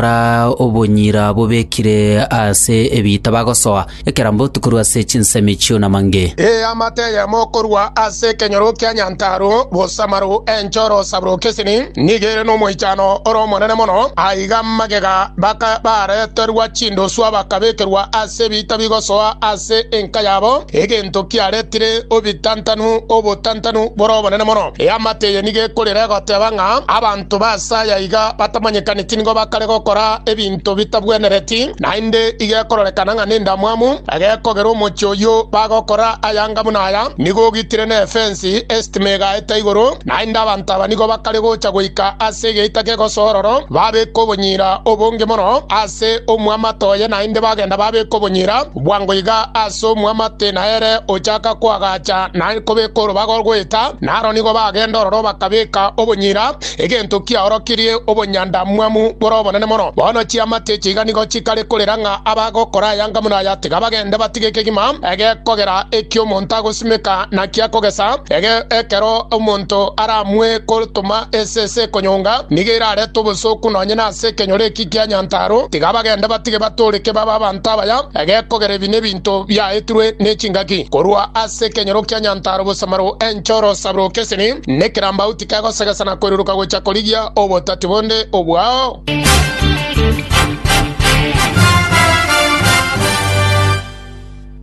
Kora obonyira bobekire ase ebiita bagosoa, ekerambe otukorwe ase chinsemi chi'onamange. Ee amato eyemo korwa ase ekenyoro kia Nyantaro bosamaru enchoro sabroki esini, nigo ere nomoichano ore omonene mono. Aiga magega baka bareterwa chindoswa bakabekerwa ase ebiita bigosoa ase enka yabo, egento kiaretire obitantanu, obotantanu bore obonene mono. Eamate eye nigo ekorera egoteba ng'a, Abanto Abanto ba ase aya iga batamanyekaneti nigo bakare gokora ebinto bitabwenereti, naende igekororekana ng'a nendamwamu egekogera omochie oyio bagokora ayanga buna aya, nigo ogitire nefensi, esitima egaeta igoro, naende abanto aba nigo bakare gocha goika ase egeita kegoso ororo babeke obonyira obonge mono ase omwamato oye, naende bagenda babeka obonyira Bwango iga ase omwamate na ere ochaka koagacha na kobeka orobaga goeta, naro nigo bagenda ororo bakabeka obonyira, egento kiaorokirie obonyandamwamu bore obonene mono. Bono chiamate echi iga nigo chikare korera ng'a abagokora ayanga buna aya tiga bagende batige ekegima egekogera eki omonto agosimeka naki akogesa. Ege ekero omonto aramue kotoma esese ekonyonga, nigo erarete obosooku nonye nase ekenyoro eki Ekiagera Nyantaro tiga abagende batige batooreke babe abanto abaya, egekogera ebi nebinto biaetirwe nechingaki. Korwa ase ekenyoro kia Nyantaro bosamaro, enchoro, osaburo, kesini, nekerambau tikegosegesa na koiruruka gocha korigia obotati bonde obwao.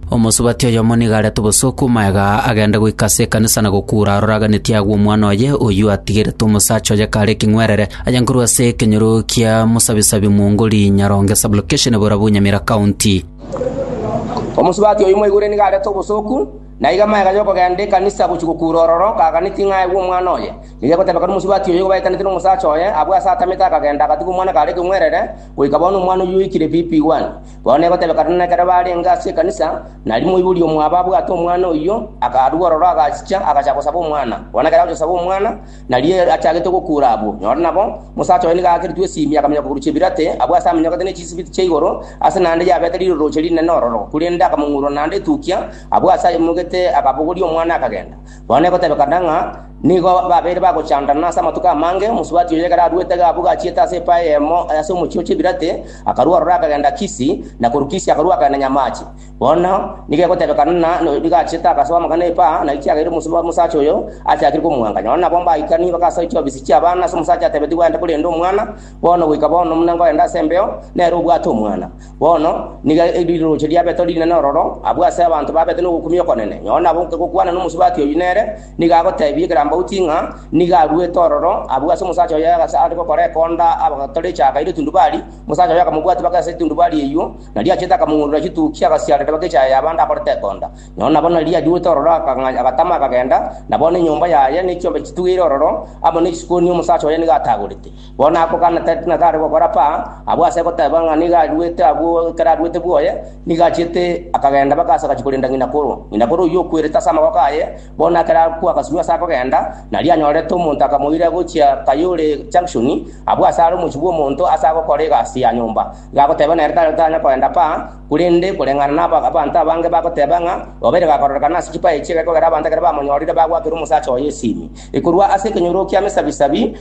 Omosubati oyomo nigo arete obosooku magega aa agende goika ase ekanisa na gokuura aroraganeti agwo omwana oye, oyio atigerete omosacha oye kare ekeng'werere, aye nkorwa ase ekenyoro kia Musabisabi Mwongori, Nyaronge Sub-location, Borabu, Nyamira County. Omosubati oyio moigure nigo arete obosooku, na aiga magega aya okogenda ekanisa gochia gokuura ororo kaganeti ng'a aegwe omwana oye. Riria egotebeka nomosubati oyio igo baetanete nomosacha oye, abwo ase atamete akagenda agatiga omwana kare ekeng'werere, goika bono omwana oyio oikire pipi igwani. Bono egotebekana nekero barenge ase ekanisa, na rimo oibori omwabo abwate omwana oyio, akarua ororo agachicha agacha gosaba omwana. Bono ekero agocha gosaba omwana, na riria achagete gokuura abwo, nyora nabo, mosacha oye nigo aakeretwe esimi akamenya koguru chebirate, abwo ase amenyokete ne chisibiti chia igoro, ase naende yabete riroroche rinene ororo, korende akamong'urora naende etukia, abwo ase ayemogete akabogoria omwana akagenda. Nonya negotebekana ng'a nigo babeire bagochandana ase amatuko amange, omosubati oyo ekero aruete iga abwo gachiete ase epae eyemo ase omochie o Chebirate, akarua ororo akagenda Kisi, na korwa Kisi akarua akagenda Nyamachi. Bono nigo egotebekana ng'a nigo achiete agasoa amagana epa, na ekiagera omosacha oyo achakire komwancha. Nonya nabwo mbaikani baka ase chiofisi chi'abana, ase omosacha atebetigwe aende korenda omwana, bono goika bono buna nkorenda ase embeo, nere obwate omwana. Bono nigo riroche ria Petero rinene ororo abwo ase abanto babete nogokumia okonene. Nonye nabo nkegokwana nomosubati oyio nere, nigo agoteebia ekerambauti ng'a nigo aruete ororo abwo ase omosacha oye ase are gokora ekonda agatore echaaka ere etundubari. Omosacha oye akamobwatia bake ase etundubari eyio, na riachete akamong'urera chitukia agasiarera bake echaaya y'abande akorete ekonda. Nonye nabo nari aruete ororo agatama akagenda, na bono enyomba yaye ne chiombe chitugire ororo, amo ne chisiko nigo omosacha oye nigo atagorete. Bono ako Kana tari ng'a kare gokora pa, abwo ase goteba ng'a nigo aruete agwo ekero aruete bwoye, nigo achiete akagenda mpaka ase agachia korenda ng'inakoro. Ng'inakoro oyio okwerete ase amaboko aye, bono ekero akwa agasirwa ase akogenda, nario anyorete omonto akamoira gochia Kayole Junction, abwo ase are omochie bw'omonto ase agokora egasi ya nyomba. Iga agoteba nere tari tanya kogenda pa, korende koreng'ana na aba- abanto abange bagoteba ng'a obeire gakororekana ase chipae echi egekogera abanto ekero bamonyorire bagwakera omosacha oye esimi ekorwa ase ekenyoro kia mesabisabi,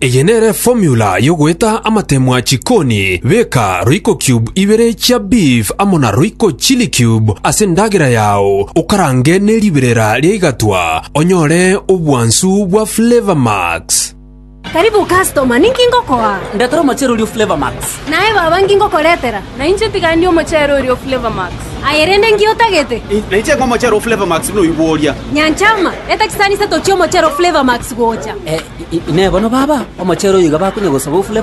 Eye nere formula y'ogoeta amatemwa chikoni, beka royco cube ibere chia beef amo na royco chili cube ase endagera yao, okarange ne riberera ria igatwa, onyore obwansu bwa Flavour Max. Karibu customer, ninki ngokoa? Ndetera omocherorio Flavour Max. Naye baba, inki ngokoretera? Na inche tigani omochere oria o Flavor Max. Aye rende inki otagete? Na inche ng'a omochere o Flavor Max noigwa oria. Nyanchama, eta chisani isato chi'omochere o Flavor Max gocha. Inee bono baba, omochere oyo iga bakonya gosaba o Flavor Max?